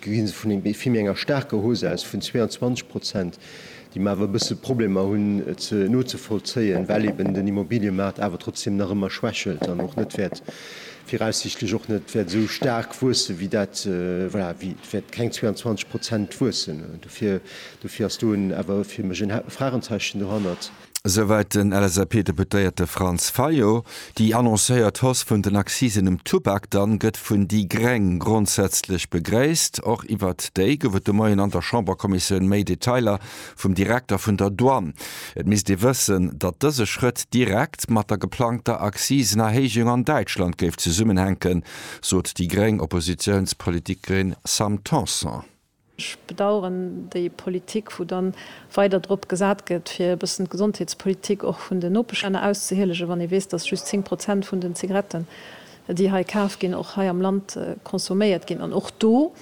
ginn se vun vill méi enger staarker Hausse aus vun 22 Prozent, déi mer awer e bësse Problemer hunn nozevollzéien, well eeben den Immobiliëmaart awer trotzdem nach ëmmer schwächelt an och net wäert, viraussichtlech och net wäert esou staark wuesse wéi dat, voilà, wéi et wäert keng 22 Prozent wuessen. Dofir, dofir ass do en, awer fir mech en Fragenzeechen dohannert. Esouwäit den LSAP-Deputéierte Franz Fayot. Déi annoncéiert Hausse vun den Accisen um Tubak dann gëtt vun déi gréng grondsätzlech begréisst. Och iwwert déi gouf et de Moien an der Chamberkommissioun méi Detailer vum Direkter vun der Douane. Et misst ee wëssen, datt dëse Schrëtt direkt mat der geplangter Accisenerhéijung an Däitschland géif zesummenhänken, sot déi gréng Oppositiounspolitikerin Sam Tanson. Ech bedauern déi Politik, wou dann weider drop gesat gëtt, fir e bëssen d'Gesondheetspolitik och vun den Nopeschlänner auszehielegen, wann ee weess, dass just 10 Prozent vun den Zigaretten, déi hei kaf ginn, och hei am Land consomméiert ginn. An och do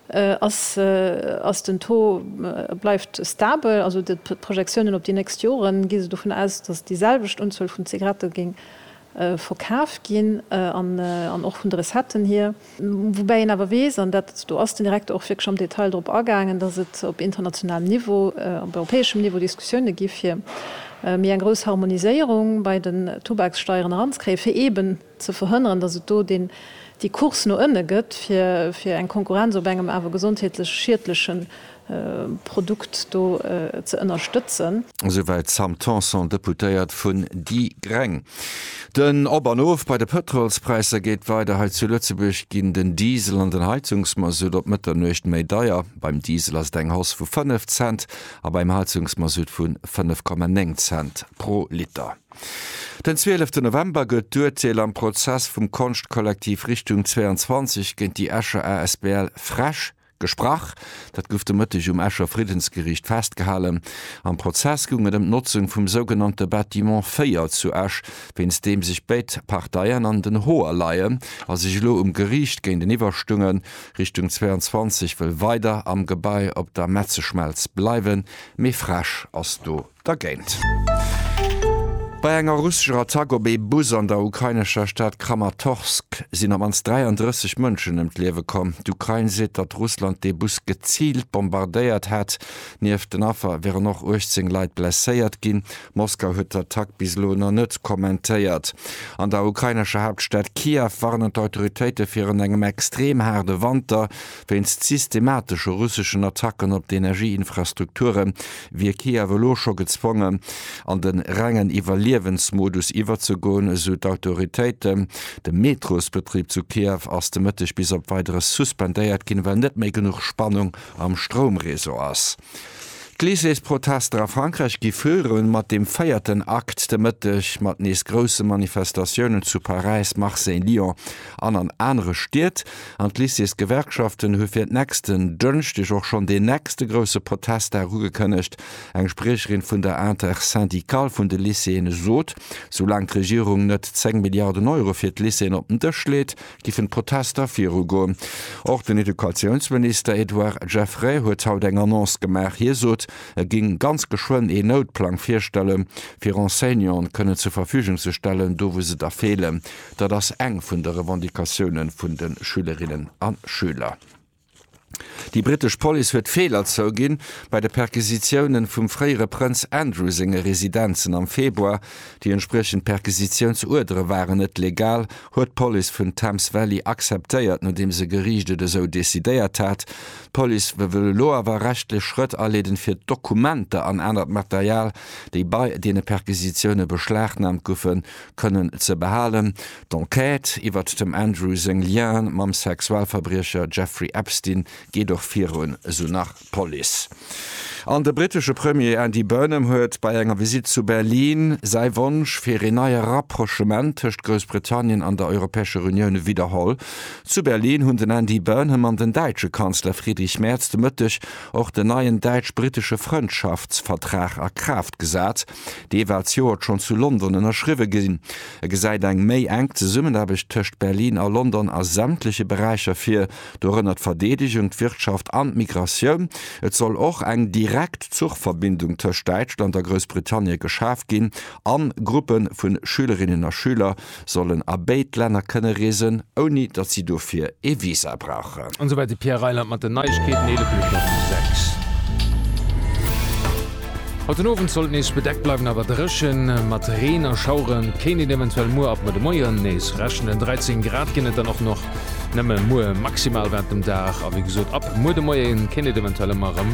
ass, ass den Taux, bleift stabel. Also d'Projektiounen op déi nächst Joren gi se dovun aus, dass déi selwecht Unzuel vun Zigarette géing verkaf ginn an och vun de Recetten hier. Woubäi een awer weess, an dat, do ass den Direkter och wierklech am Detail drop agaangen, datt et op internationalem Niveau, op europäeschem Niveau Diskussioune gi fir méi eng grouss Harmoniséierung bei den Tubakssteieren eranzekréien, fir eeben ze verhënneren, datt et do déi Course no ënne gëtt, fir eng Konkurrenz op engem awer gesondheetlech schiedleche Produkt do ze ënnerstëtzen. Esouwäit d'Sam Tanson, Deputéiert vun déi Gréng. Den Op an Of bei de Pëtrolspräisser geet weider. Hei zu Lëtzebuerg ginn den Diesel an den Heizungsmasutt op Mëtternuecht méi deier. Beim Diesel ass et eng Hausse vu 5 Cent a beim Heizungsmasutt vu 5,9 Cent pro Liter. Den 12 November gëtt d'Urteel am Prozess vum Konschtkollektiv Richtung 22 géint déi Escher asbl Fresch. Gesprach. Dat gouf de Mëtteg um Escher Friddensgeriicht festgehalen. Am Prozess goung et ëm d'Notzung vum sougenannte Bâtiment 4 zu Esch, wéinst deem sech béid Parteien an den Hoer leien a sech elo um Geriicht géinteniwwer stungen. Richtung 22 wëll weider am Gebai op der Metzeschmelz bleiwen, mee frEsch ass do Dergéint. Bei enger russescher Attack op ee Bus an der ukrainescher Stad Kramatorsk sinn am mannst 33 Mënschen ëm d'Liewe komm. D'Ukrain seet, datt Russland dee Bus geziilt bombardéiert hätt. Nieft den Affer wieren och 18 Leit blesséiert ginn. Moskau huet d'Attack bis elo nach net kommentéiert. An der ukrainescher Haaptstad Kiew warnen d'Autoritéite virun engem extrem haarde Wanter. Wéinst systematesche russeschen Attacken op d'Energieinfrastrukture wier Kiew elo scho gezwongen, an de rengen Iwwerliewensmodus iwwerzegoen, esou d'Autoritéiten. De Metrosbetrib zu Kiew ass de Mëtteg bis op Weideres suspendéiert ginn, well net méi genuch Spannung am Stroumreseau ass. D'Lycéesprotester a Frankräich gi viru mat dem véierten Akt de Mëtteg, mat nees grousse Manifestatiounen zu Paräis, Marseille, Lyon an an anere Stied. An d'Lycéesgewerkschaften hu fir nächsten Dënschdeg och schonn deen nächste grousse Protestdag ugekënnegt. Eng Spriecherin vun der Intersyndicale vun de Lycéeën sot, soulaang d'Regierung net 10 Milliarden Euro fir d'Lycéeën op den Dësch leet, giffen d'Protester virugoen. Och den Educatiounsminister Edouard Geffray huet haut eng Annonce gemaach. Hie sot, e géing ganz geschwënn een Noutplang virstelle fir Enseignanten kënnen zur Verfügung ze stellen, do wou se der feelen. Dat ass eng vun de Revendicatioune vun de Schülerinnen a Schüler. Déi brittesch Police huet Feeler zouginn bei de Perquisitiounen vum fréiere Prënz Andrew senge Residenzen am Februar. Déi entspriechend Perquisitiounsuerdere waren net legal, huet d'Police vun Thames Valley akzeptéiert, nodeems e Geriicht et esou decidéiert hat. D'Police wëll elo awer rechtlech Schrëtt aleeden, fir d'Dokumenter an anert Material, déi bei deene Perquisitioune beschlagnahmt goufen, kënnen ze behalen. D'Enquête iwwert dem Andrew seng Liene mam Sexualverbriecher Jeffrey Epstein geet och virun, esou nach d'Police. An de brittesche Premier Andy Burnham huet bei enger Visitt zu Berlin säi Wonsch fir een neie Rapprochement tëscht Groussbritannien an der Europäescher Unioun widderholl. Zu Berlin hunn den Andy Burnham an den däitsche Kanzler Friedrich Merz de Mëtteg och den neien däitsch-brittesche Frëndschaftsvertrag a Kraaft gesat. Dee war d'Joert schonn zu London ënnerschriwwe ginn. E gesäit eng méi enk Zesummenaarbecht tëscht Berlin a London a sämtleche Beräicher vir, dorënner d'Verdeedegung, d'Wirtschaft an d'Migratioun. Et soll och eng direkt Zuchverbindung tëscht Däitschland a Groussbritannie geschaf ginn a Gruppe vu Schülerinnen a Schüler, sollen a béid Länner kënne reesen, ouni datt si dofir ee Visa brauchen. An esouwäit de Pierre Reyland mat den Neiegkeeten, 11 Minutten op déi 6. Haut den Owend sollt et nees bedeckt bleiwen, awer dréche mat Reen a Schauere kéint een eventuell muer ab no de Moie nees rechnen. 13 Grad ginn et dann och nach nëmme muer maximal, wat dem Dag a wéi gesot ab muer de Moie kéint et eventuell ëmmer erëm